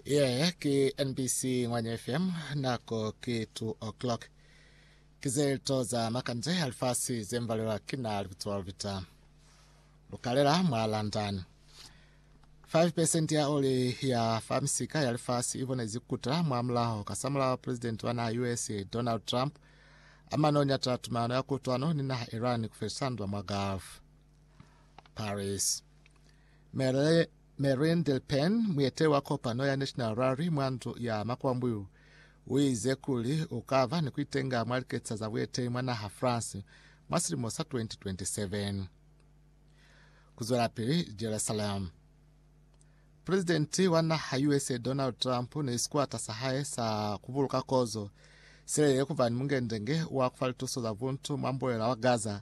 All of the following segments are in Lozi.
Yeah, ki NBC Ngwanya FM nako ki 2 o'clock. Kizelto za makanje alifasi zembalelwa kina lipitso lupita. Lukalela mwa London. 5% ya oli ya famisika ya lifasi ibone zikuta mwa mulaho kasamulaho president wa naha US Donald Trump amano nyata tumano ya kutwano ni naha Iran kufelisandwa mwa Gulf. Paris. Marine Le Pen, mueteli wa kopano ya National Rally mwa ndu ya makwambuyu, uize kuli ukaba ni kuitenga mwa liketisa za bueteli mwa naha France mwa silimo sa 2027. Kuzwelapili Jerusalem. Presidenti wa naha USA Donald Trump ni sikwata sa hae sa kubuluka kozo silelele kuba ni mungendenge wa kufa lituso za buntu mwa mbulela wa Gaza,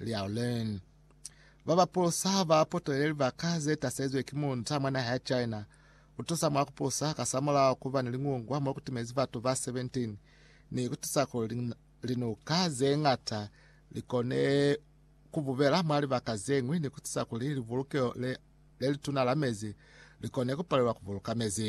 Liao Leng. Ba ba polosa ha ba potelele libaka ze tasezwe ki muunza mwa naha ya China ku tusa mwa ku polosa kasamulaho ku ba ni liñungwa mo ku timezi batu ba 17 ni ku tisa kuli linuka ze ñata li kone ku bubela mwa libaka ze ñwi ni ku tisa kuli libulukeho le lituna la mezi li kone ku palelwa ku buluka mezi.